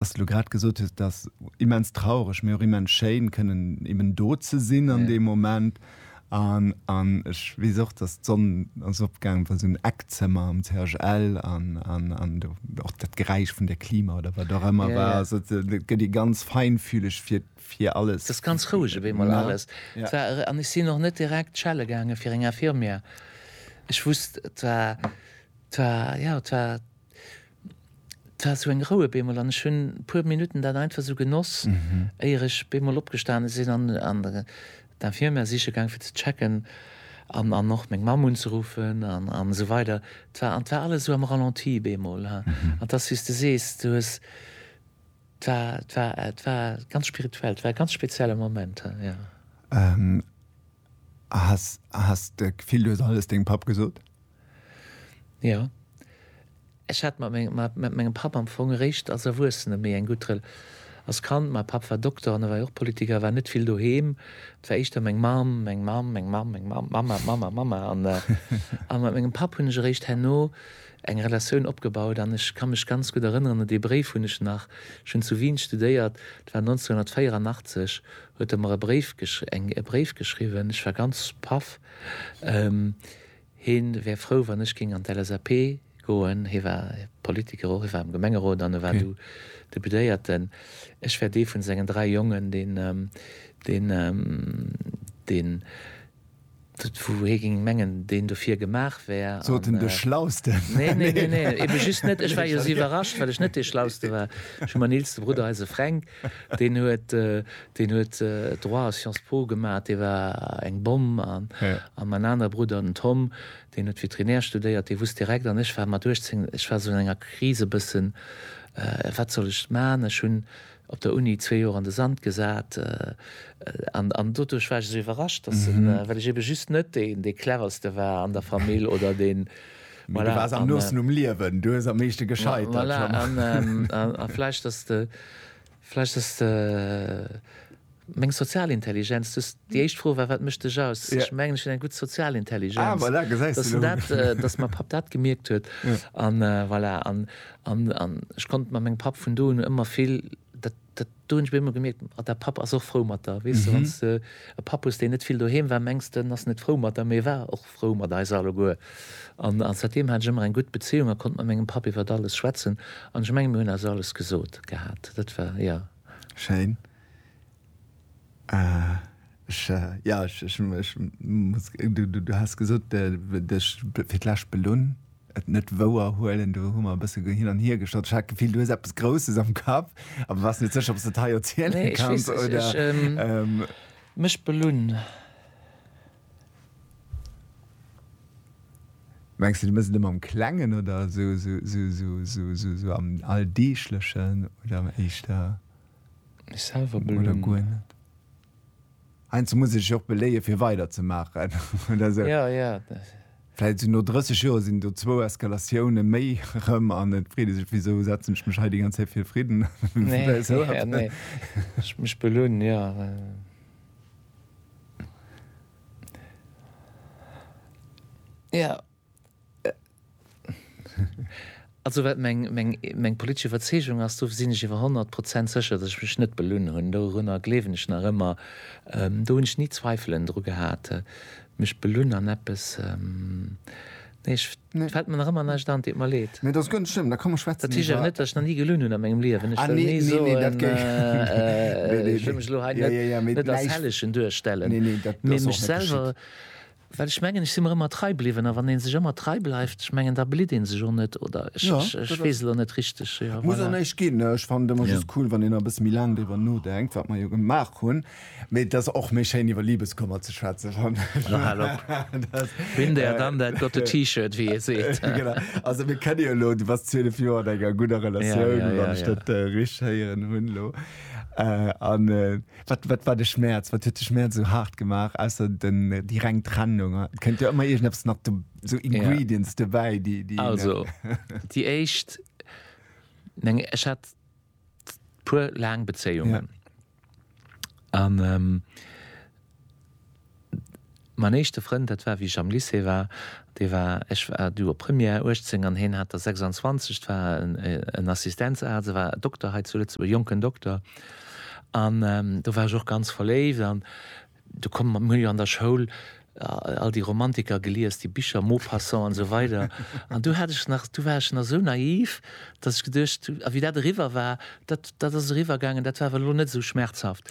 Dass du grad gesot hues, dass immens traureg, mee och immens schéin kënnen eben do ze sinn an deem Moment. An an ech weess och, dass d'Sonn ass opgaangen, war esou en Eckzëmmer am CHL an an an do och dat Geräisch vun der Klima oder wat och ëmmer war. Also et gëtt ee ganz feinfühleg fir fir alles. Et ass ganz roueg op eemol alles. Et war an ech sinn och net direkt schelle gaangen fir eng Infirmière. Ech wusst, et war et war jo et war. 't war sou eng Rou op eemol an ech hunn puer Minutten dat einfach sou genoss, éier ech op eemol opgestane sinn an d'Infirmière siche gaang fir ze checken an och meng Mamm unzeruffen an esou weider. 't war an 't war alles esou am Ralenti op eemol an 't ass wéi s de sees, du hues, 't war, 't war, 't war ganz spirituell, 't war e ganz spezielle Moment, jo. Has de d'Gefill, du hues alles dengem Papp gesot? Jo. Ech hat mat mengem Papp am Fong eréischt als Erwuessene méi eng gutt Rel. Als Kand, mäi Papp war Dokter an e war jo och Politiker, war net vill doheem. Et war éischter meng Mamm, meng Mamm, meng Mamm, meng Mamm, Mamma, Mamma, Mamma. An mat mengem Papp hunn ech eréischt herno. eng Relatioun opgebaut an ech ka mech ganz gutt erënneren un dee Bréif, hunn ech nach, ech hunn zu Wien studéiert, et war 1984, huet e mer e Bréif gesch eng e Bréif geschriwwen, ech war ganz paff, hie wär frou wann ech géing an d'LSAP goen, hie war Politiker och, hie war am Gemengerot an e war du Deputéierten, ech wär dee vun sengen dräi Jongen, deen, deen, deen. Wouhir ging mengen deen dofir gemaach wär. Sot en de Schlausten? Nee, nee, nee, nee, eben just net. Ech war jo sou iwwerrascht, well ech net dee Schlauste war. Ech hu man eelste Brudder, eise Fränk, deen huet, deen huet Droit a Sciences Po gemaat, dee war eng Bomm. An an man aner Brudder, den Tom, deen huet Vétérinaire studéiert, dee wusst direkt. An ech war mat 18, ech war sou an enger Kris e bëssen, wat soll ech maan? Ech hun Op der Uni zwee Joer an de Sand gesat, an doduerch war ech esou iwwerrascht, dass en, well ech ebe just net deen, dee cleverste war an der Famill oder deen, voilà. Mee du waars am noosten um Liewen, du hues am meeschte gescheitert. Voilà, an vläicht, dass de, vläicht, dass de. Meng sozial Intelligenz, du hues, déi éischt Fro war, wat mécht dech aus? Ech mengen, ech hunn eng gutt sozial Intelligenz. Ah, voilà, gesäis de elo. Datt mäi Papp dat gemierkt huet. An voilà, an, an, an ech konnt mat mengem Papp vun do un ëmmer vill, dat, dat, do hunn ech bei ëmmer gemierkt, ah, däi Papp ass och frou mat der. Weess de, wann s de e Papp hues, deen net vill doheem war, mengs de, en ass net frou mat der, mee e war och frou mat eis alleguer. An, an säitdeem hat ech ëmmer eng gutt Bezéiung a konnt mat mengem Papp iwwert alles schwätzen. An ech mengen, mir hunn eis alles gesot gehat. Dat war, jo. Schéin. Jo, ech muss, du has gesot, dech fir d'lescht belunn, et net wouer huelen. Do hu mer e bësse hin an hier geschott. Ech hat d'Gefill, du hues eppes Grousses am Kapp, awer waars net sécher, ob s de et hei erziele kanns oder. Mech belunn? Mengs de, du mëss et ëmmer am Klengen oder esou am Alldeeglechen oder am éischter? Mech selwer belonen. Heiansdo muss ee sech och beléie fir weider ze maachen oder esou. Vläit sinn no 30 Joer sinn do zwou Eskalatioune méi erëm an et freet ee sech, wisou setzen ech mech hei déi ganz Zäit fir fridden. Mech belonen, jo. Jo, Also wat meng politesch Iwwerzeegung ass, do sinn ech iwwer honnert Prozent sécher, datt ech mech net belunn hunn. Dorunner gleewen ech nach ëmmer. Do hunn ech ni Zweifelen dru gehat, mech belunn an eppes. Nee, ech, et fält mer nach ëmmer näischt an. Et deet mer leed. Nee, dat ass ganz schlëmm. Da kommen mer schwätzen iwwer. Dat heescht awer net, datt ech nach ni gelunn hunn a mengem Liewen. Ech wëll ni soen, ech wëll mech elo hei net als Hellegen duerstellen, mee mech selwer. Well ech mengen, ech si mer ëmmer trei bliwwen. A wann ee sech ëmmer trei bleift, ech mengen, da blitt ee sech och net, oder? Ech, ech, ech weess elo net richteg. Jo, Muss och voilà. näischt ginn. Ech fannen et ëmmer just cool, wann een nach e bësse méi laang driwwer nodenkt, wat mer jo gemaach hunn. Mee et ass och méi schéin, iwwer Libeskummer ze schwätzen, fannen ech. Lo hal op. Been there, done that, got the T-Shirt, wéi ee seet. Genau. Also, mir kennen jo elo, du waars 12 Joer an enger gudder Ja, Relatioun, ja, ja, wann ech ja. dat richteg héieren hunn elo. An, Wat, wat war de Schmäerz? Wat huet de Schmäerz esou haart gemaach, ausser den, déi reng Trennung? Et kënnt jo ëmmer iergendeppes nach do, esou Ingredients dobäi, déi, déi een. Also, déi éischt, meng, ech hat puer laang Bezéiungen. An. Mäin éischte Frënd, dat war wéi ech am Lycée war, dee war, ech war du op Première, 18 an heen hat der 26, et war en Assistenzarzt, e war Dokter hei zu Lëtzebuerg, e jonken Dokter. An do war ech och ganz verléift an do komm, mir hu jo an der Schoul all déi Romantiker gelies, déi Bicher Maupassant an esou weider an do hat ech nach, do war ech nach esou naiv, datt ech geduecht hu, a wéi dat eriwwer war, dat, dat ass eriwwergaangen, dat war awer elo net esou schmerzhaft.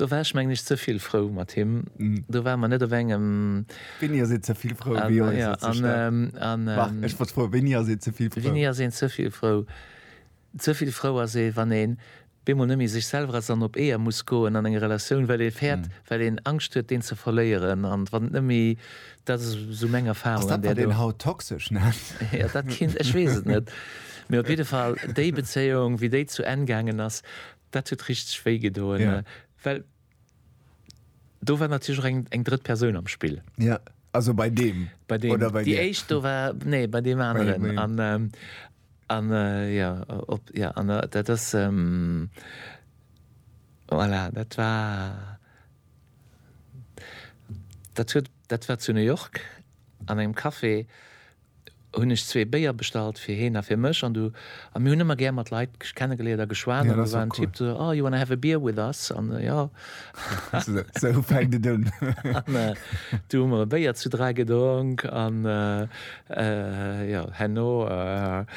Do war ech mengen ech ze vill frou mat him. Do ware mer net op engem. Wéini ass een ze vill frou? Wéi ass een ze staark? Marc, ech wollt froen, wéini ass een ze vill frou? Wéini ass een ze vill frou? Ze vill frou ass ee wann een bemol net méi sech selwer ass an op Eeër muss goen an enger Relatioun, well ee fäert, well een Angscht huet deen ze verléieren an wann et net méi, dat ass esou meng Erfarung. Ass dat wat een haut toxesch nennt? Jo, dat kinnt, ech weess et net. Mee op jidde Fall déi Bezéiung wéi déi zu Enn gaangen ass, Dat huet richteg wéi gedoen, well do war natierlech och eng eng drëtt Persoun am Spill. Ja, also bei deem bei deem oder bei déi dir? éischt do war, nee bei deem Bei aneren deem. an ähm, an äh, jo op jo an äh, dat ass ähm, voilà dat war dat huet dat war zu New York an engem Café. hunn ech zwee Béier bestallt fir heen a fir mech an du a mir hunn ëmmer gär mat Leit kennegeléiert a geschwat an do war en Typ do so, oh you wanna have a beer with us an jo sou fänkt et un an du hu mer e Béier zu dräi gedronk an jo herno.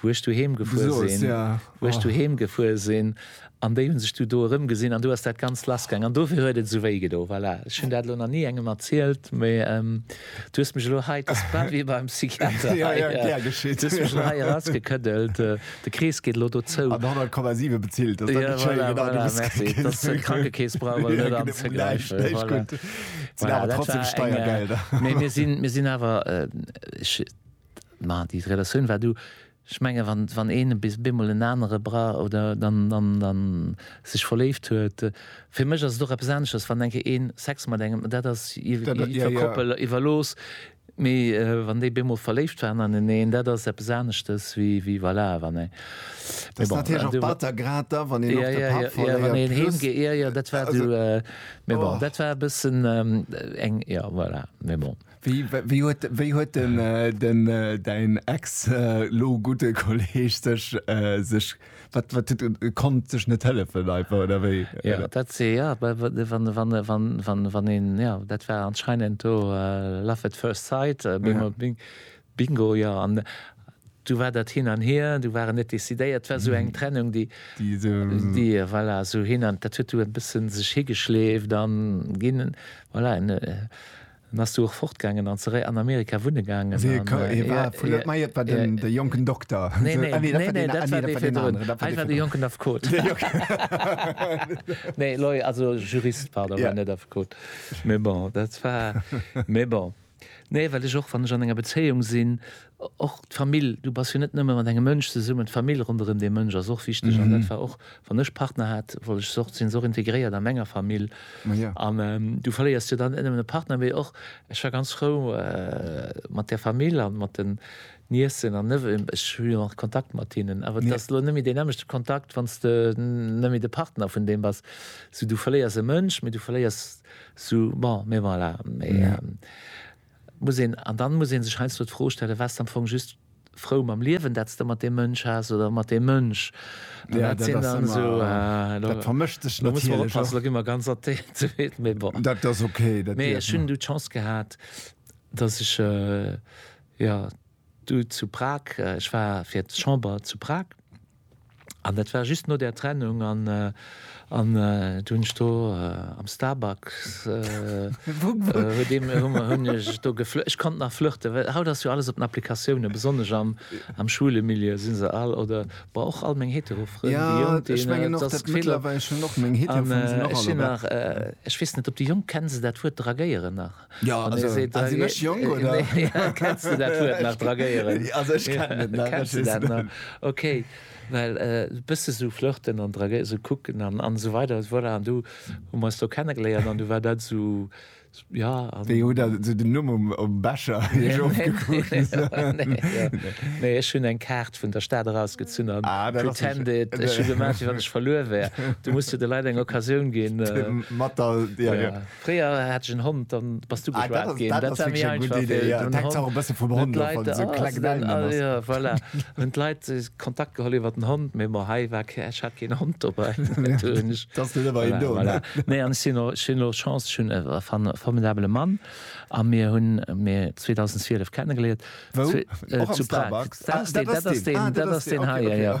wou ech du heem gefuer sinn, wou ech du heem gefuer sinn, an déi hu sech du do erëmgesinn, an du ass dat Ganzt lassgaangen, an dofir huet et esou wéi gedo. Voilà, ech hunn dat elo nach ni engem erzielt, mee du hues mech elo hei, et ass grad wéi beim Psychiater hei, du hues mech elo hei erausgekëddelt, de Krees geet elo do zou. An 100,7 bezilt, dat ass dann net schéin, genau, du hues grad gekuckt. Voilà, merci, d'Krankekeess brauch elo net anzegräifen. Voilà, dat war eng, voilà, dat war eng, mee mir sinn awer, Mä déi Relatioun war do. Ech menge wann een bis bemol en anere bra oder dann dann sech verléift huet. Fir mech ass et och eppes anesches, wann enke een Sex mat engem, dat ass iwwer Koppel iwwerlooss, mee wann déi bemol verléift waren aneneen, dat ass eppes aneschtes wéi voilà wann ee. Dat ass natierlech och batter, grad da wann een och de Papp verléiert. Wann een heem geet, jo jo dat war do. Mee bon dat war e bëssen eng, jo voilà, mee bon. Wéi huet wéi huet den den däin ex lo gudde Kolleg sech sech wat wat huet e konnt sech net hëllefen einfach oder wéi? Jo dat si jo bei wann wann wann wann wann een jo dat war anscheinend do love at first sight bingo jo an du war dat hin an hier du waren net decidéiert war sou eng Trennung déi déi déi voilà sou hin an dat huet du e bëssen sech higeschleeft an ginn voilà en En ass du och fortgaangen an zeréi an Amerika wunne gaangen. Wéi e ka, ee war vu Lëtt, mä et war den, de jonken Dokter. Nee, nee, nee, nee, nee, dat war dee virdrun. Hei war de jonken Affekot. Nee, Lawyer, also Jurist, pardon, war net Affekot. Mee bon, dat war, mee bon. Nee, well ech och, wann ech an enger Bezéiung sinn, Och d'Famill, du bass jo net nëmme mat engem Mënsch zesummen, d'Famill ronderëm dee Mënsch ass och wichteg. An dat war och, wann ech Partner hat, wollt ech se och, sinn se och integréiert a menger Famill. An du verléiers jo dann net nëmmen e Partner, mee och, ech war ganz frou mat der Famill a mat den Niécen an Neveuxen, ech hu jo nach Kontakt mat hinnen, awer et ass elo net méi deen nämmlechte Kontakt, wann s de net méi de Partner vun deem bass. Sou du verléiers e Mënsch, mee du verléiers sou, bon, mee voilà. Muss een, an dann muss een sech heiansdo d'Fro stellen, Waars d'am Fong just frou mam Liewen dat s de mat deem Mënsch haas oder mat deem Mënsch? An dat sinn dann esou, elo muss mer oppassen, elo gi mer ganz athee, mee bon. Mee ech hunn du d'Chance gehat, datt ech jo du zu Prag, ech war fir d'Chamber zu Prag, An dat war just no där Trennung an do hunn ech do am Starbucks, hunn ech do geflirt, ech konnt nach flirten, well haut ass jo alles op den Applikatiounen, besonnesch am schwule Milieu si se all, oder bon och all meng hetero Frënn, déi Jonk, déi hunn net dës Gefill. Ech sinn nach, ech weess net, ob déi Jonk, kennen se dat Wuert dragéieren nach? Jo, An also, seet, also, nee, jung, äh, oder? Nee, kennst du dat Wuert nach dragéieren? also, ich kann net nach, kennst du dat nach? Okay, well äh, bësse sou flirten an dragéieren, sou kucken an, an sou weider, voilà, an du hu mer eis do kennengeléiert an du war dat sou, ja. An, Wéi huet dat so den Numm um, um Becher nee, nee, so. nee, ja. nee, ech hunn eng Kaart vun der Stad erausgezunn an ah, pretended, ech hu gemerkt, wann ech verluer wär. Du musst de Leit eng Occasioun ginn. Äh, Matter, ja, ja. ja. Fréier hat ech en Hond, dann bass du geschwat gin. Dat war méi einfach fir den Hond. Hun d'Leit Kontakt geholl iwwer den Hond, mee bon, hei war kee, ech hat keen Hond dobei. Nee, an ech hun och Chance, ech hun e formidabele Mann a mir hun mir 2012 kennengeléiert. Wou? Zu Prag. Dat ass deen hei, jo.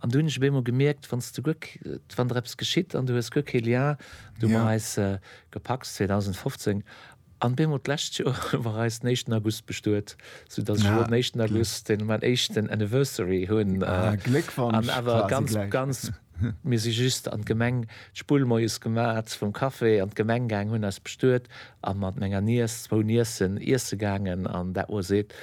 An du hunn ech op eemol gemierkt, wann s du guer, wann der eppes geschitt an du hues guer kee Lien, du mer eis gepacks 2015 an op eemol d'lescht Joer war eis den éischten August bestuet, sou dass ech elo den éischten August den mäin éischten Anniversary hunn an awer ganz, ganz, mir si just an d'Gemeng d'Spull moies gemat vum Café an d'Gemeng gaangen, hunn eis bestuet a mat menger Niess, zwou Niessen, iesse gaangen an dat moies eent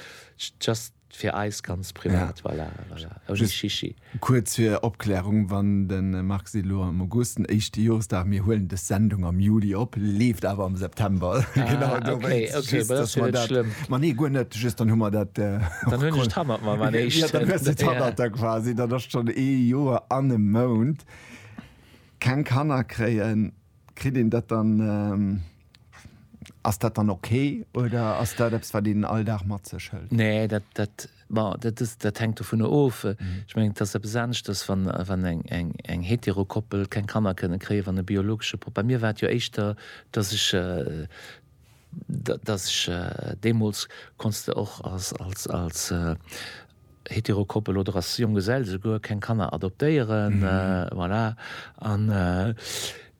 just. Fir eis ganz privat, voilà, voilà. Ouni Chichi. Kuerz fir Opklärung, Wann de Marc seet elo am August den éischte Joresdag, mir huelen des Sendung am Juli op, leeft awer am September. Genau dowéinst. Ah, okay, okay, ma da ass jo net schlëmm. Ma nee, guer net, just dann hu mer dat. Dann hunn ech et hannert mer, mäin éischten. Jo, dann hues de et hannert der quasi. Dann ass et schonn ee Joer an e Mount. Keng Kanner kréien. Kritt een dat dann? Ass dat dann ok oder ass dat eppes wat een all Dag mat sech hëlt? Nee, dat dat bon dat ass dat hänkt dovunner of. Ech mengen et ass eppes aneschters wann wann eng eng eng hetero Koppel keng Kanner kënne kréien wann e biologesche Pop. Bei mir war et jo éischter datt ech datt ech deemools konns de och als als als Heterokoppel oder ass Jonggesell esouguer, keng Kanner adoptéieren, voilà. An,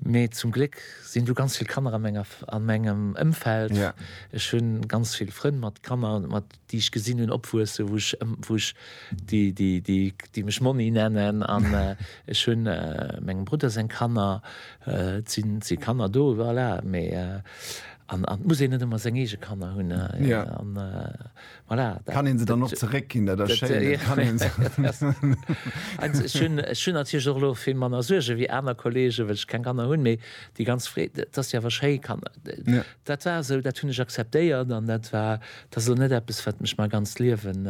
mee zum Gléck sinn do ganz vill Kanner a menger, a mengem Ëmfeld. Ja. Ech hunn ganz vill Frënn mat Kanner, mat, déi ech gesinn hunn opwuessen, wou ech, wou ech, déi, déi, déi, déi mech Monni nennen. An ech hunn mengem Brudder seng Kanner, et sinn, et si Kanner do, voilà. Mee, an, an et muss een net ëmmer seng eege Kanner hunn. Ja. An, Voilà, dat, kann een se dann och zeréck ginn, dat ass schéin. Ech hunn natierlech och elo vill manner Suerge wéi aner Kolleegen, well ech keng Kanner hunn. Mee déi ganz Freed, et ass jo awer schéi Kanner. Dat war esou, dat hunn ech akzeptéiert an dat war, dat ass elo net eppes, wat mech mäi ganzt Liewen,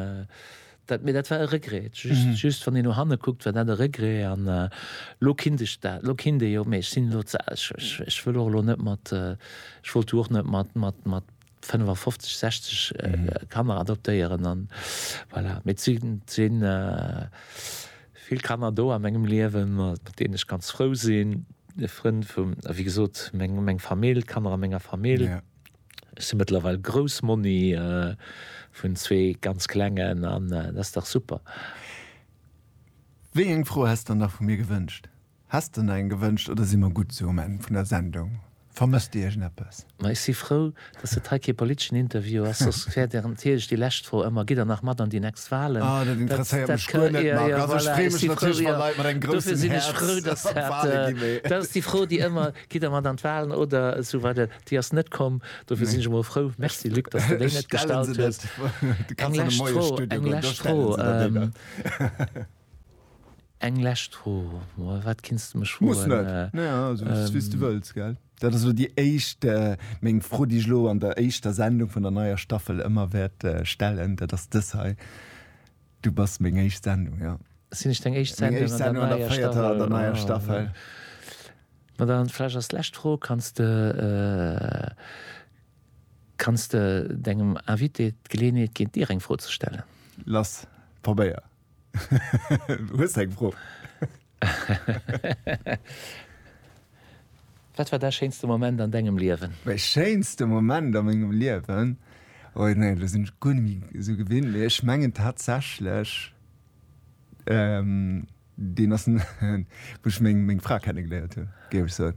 dat, mee dat war e Regret. Just wann een no hanne kuckt, war dat e Regret an elo kinnt ech dat, elo kinnt ee jo. Mee ech sinn elo ze al, ech wëll och elo net mat, ech wollt jo och net mat, mat, mat. 55, 60 Kanner adoptéieren an voilà. Mee et sinn, et si vill Kanner do a mengem Liewen, mat deenen ech ganz frou sinn, Frënn vum, wéi gesot, meng, meng Famill, d'Kanner a menger Famill. Ja. Ech si mëttlerweil Groussmonni vun zwee ganz Klengen an dat ass dach super. Wéi eng Fro häss s der nach vu mir gewënscht? Häss de eng gewënscht oder si mer gutt esou um Enn vun der Sendung? Vermësst Dir iergendeppes? Ma ech si frou, datt et hei kee politeschen Interview ass, soss wär der natierlech déi lescht Fro ëmmer, Gitt Der nach mat an déi nächst Walen? Ah, dat interesséiert mech guer net, Marc. Also ech freeë mech natierlech, wa Leit mat engem groussen Häerz an d'Wale gi mee. Dat ass déi Fro, déi ëmmer, Gitt Der mat an d'Walen oder esou weider? Déi ass net komm, dofir sinn ech emol frou. Merci, Luc, datt s de déi net gestallt hues. Eng lescht Fro, eng lescht Fro. Eng lescht Fro, ma wat kinns de mech froen? Muss net, ne also et ass wéi s du wëlls, gell? Dat ass elo déi éischt, meng Fro déi ech elo an der éischter Sendung vun der neier Staffel ëmmer wäert stellen, dat ass dës hei, du bass meng éischt Sendung, jo. Sinn ech deng éischt Sendung an der neier Staffel? An der neier Staffel. Ma dann vläicht als lescht Fro, kanns de, kanns de dengem Invité d'Geleeënheet ginn dir eng Fro ze stellen? Lass probéieren. Hues eng Fro? Wat war däi schéinste Moment an dengem Liewen? Mäi schéinste Moment a mengem Liewen? Oh jo, nee, elo sinn ech guer net méi esou gewinnt, mee ech mengen tatsächlech, deen ass, wou ech meng Fra kennegeléiert hunn, géif ech soen.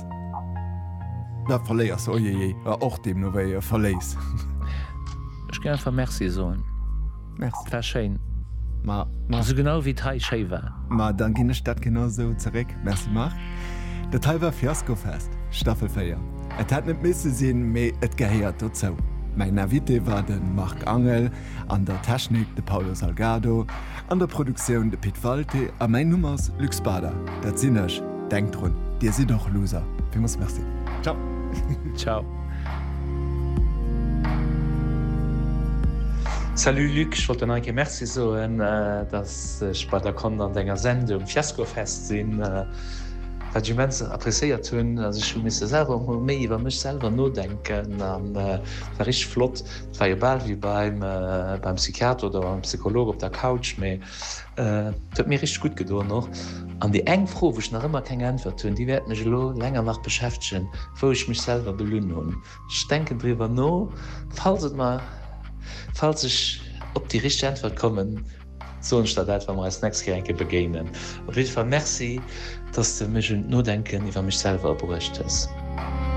Da verléiers se, ojejej, a och deemno wéi e verléis. Ech géing einfach Merci soen. Merci. War schéin. Ma, ma. Sou genau wéi et hei schéi war. Ma dann ginn ech dat genau sou zeréck. Merci Marc. Dat hei war Fiaskofest, Staffel 4. Et hätt net misse sinn, mee et gehéiert dozou. Mäin Invité war de Marc Angel. An der Technik de Paulo Salgado. An der Produktioun de Pit Walté. A mäin Numm ass Luc Spada, dat sinn ech. Denkt drun, dir sidd och Loser. Villmools Merci. Ciao. Ciao. Salut Luc, ech wollt der nach eng Kéier Merci soen, dass ech bei der konnt an denger Sendung Fiasco Fest sinn, wat ech immens appréciéiert hunn. Also ech hu misse selwer och mol méi iwwer mech selwer nodenken an war richteg flott. war jo bal wéi beim Psychiater oder beim Psycholog op der Couch, mee et huet mir richteg gutt gedoen och. An déi eng Fro, wou ech nach ëmmer keng Äntwert hunn, déi wäert mech elo länger nach beschäftegen, wou ech mech selwer belunn hunn. Ech denken driwwer no, falls et mer, falls ech op déi richteg Äntwert kommen, soen ech der dat, wa mer eis d'nächst Kéier eng Kéier begéinen. Op jidde Fall Merci, dass s de mech un d'Nodenken iwwer mech selwer bruecht hues.